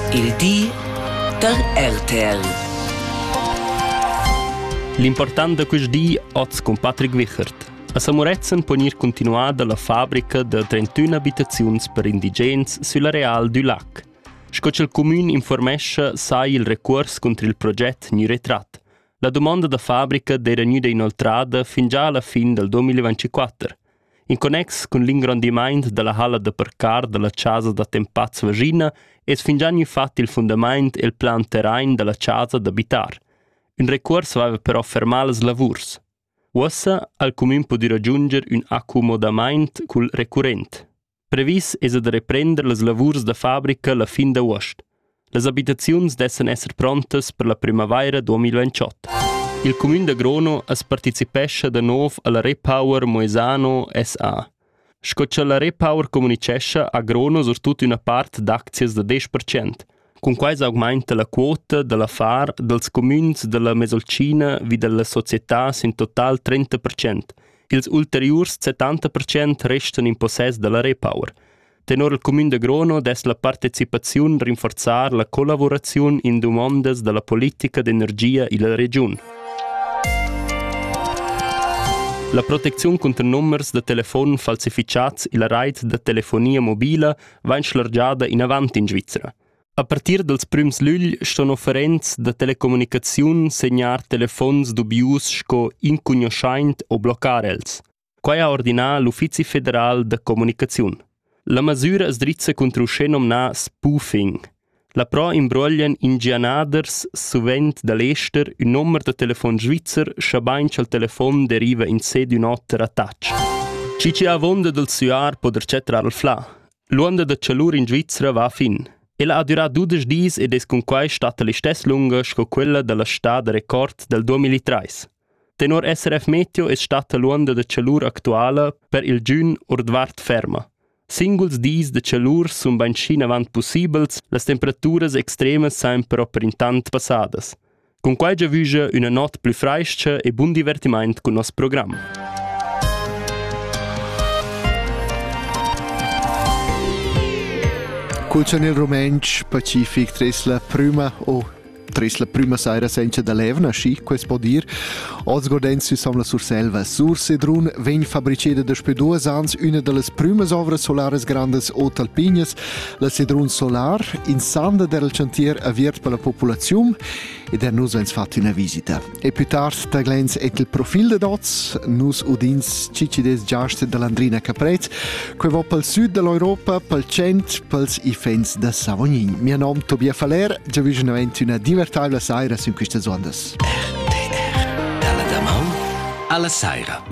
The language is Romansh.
Il di da RTL. L'impurtant da quest di oz cun Patrick Wichert. A Samuretzen pon ir continuada la fabrica da 31 abitaziuns per indigens sül areal du lac. Sco ch'el comün informescha sai il recuors contro il proget gnü retrat. La domanda da fabrica d'era gnüda inoltrada fin già alla fin dal 2024. In connex cun l'ingrondimaint da la halla da parcar da la chasa d'attempats Vaschina es fingià gnü fat il fundamaint e'l plan terrain da la chasa d'abitar. Ün recuors vaiva però fermà las lavurs. Uossa ha'l cumün pudü ragiunder ün accumodamaint cul recurrent. Previs esa da reprender las lavurs da fabrica la fin d'avuost. Las abitaziuns dessan esser prontas per la primavaira 2028. Il cumün da Grono as partecipescha da nov alla Repower Moesano SA. Sco cha la Repower comunichescha, ha Grono surtut üna part d'aczias da 10%. Cunquai s'augmainta la quota da l'affar dals cumüns da la Mesolcina vi da la società sün total trenta percent. Ils ulteriurs settanta percent restan in possess da la Repower. Tenor il cumün da Grono dess la partecipaziun rinforzar la collavuraziun in dumondas da la politica d'energia illa regiun. La protecziun cunter numbers da telefon falsifichats illa rait da telefonia mobila vain schlargiada inavant in Svizra. A partir dals prüms lügl ston offerents da telecommunicaziun segnar telefons dubius sco incugnoschaint o bloccar els. Quai ha ordinà l'Uffizi federal da comunicaziun. La masüra as drizza contro uschè nomnà spoofing – Là però imbruoglian ingianaders suvent da l'ester ün nomer da telefon svizzer, schabain cha'l telefon deriva insè d'ün oter attach. Schi chi avonda dal süar po der chatrar il flà. L'uonda da chalur in Svizra va a fin. Ella ha durà dudesch dis ed es cunquai statta l'istess lunga sco quella da la stà da record dal 2003. Tenor SRF Meteo es statta l'uonda da chalur actuala per il giün ordvart ferma. Singuls dis da tschalur sun bainschi avant pussibels, las temperaturas extremas san però per intant passadas. Cun quai giavüscha üna not plü frais-cha e bun divertimaint cun nos program. Cul chanel rumentsch pacific tres la prüma o Tres la prüma saira senza da levna, schi quest po dir, oz gordend süsom la Surselva Sur Sedrun vegn fabriceda daspö duos ans üna da las prümas ovras solaras grandas Ot Alpinias, la Sedrun Solar, in sanda der il chantier aviert per la populaziun ed er nus ans fat üna visita. E più tard taglens et il profil de dots, nus udins cicides giast dell'Andrina Caprez, que va pel sud dell'Europa, pel cent, pels ifens de Savognin. Mia nom Tobia Faller, già visionament una divertabla saira in queste zondas. RTR. Alla Daman, alla saira.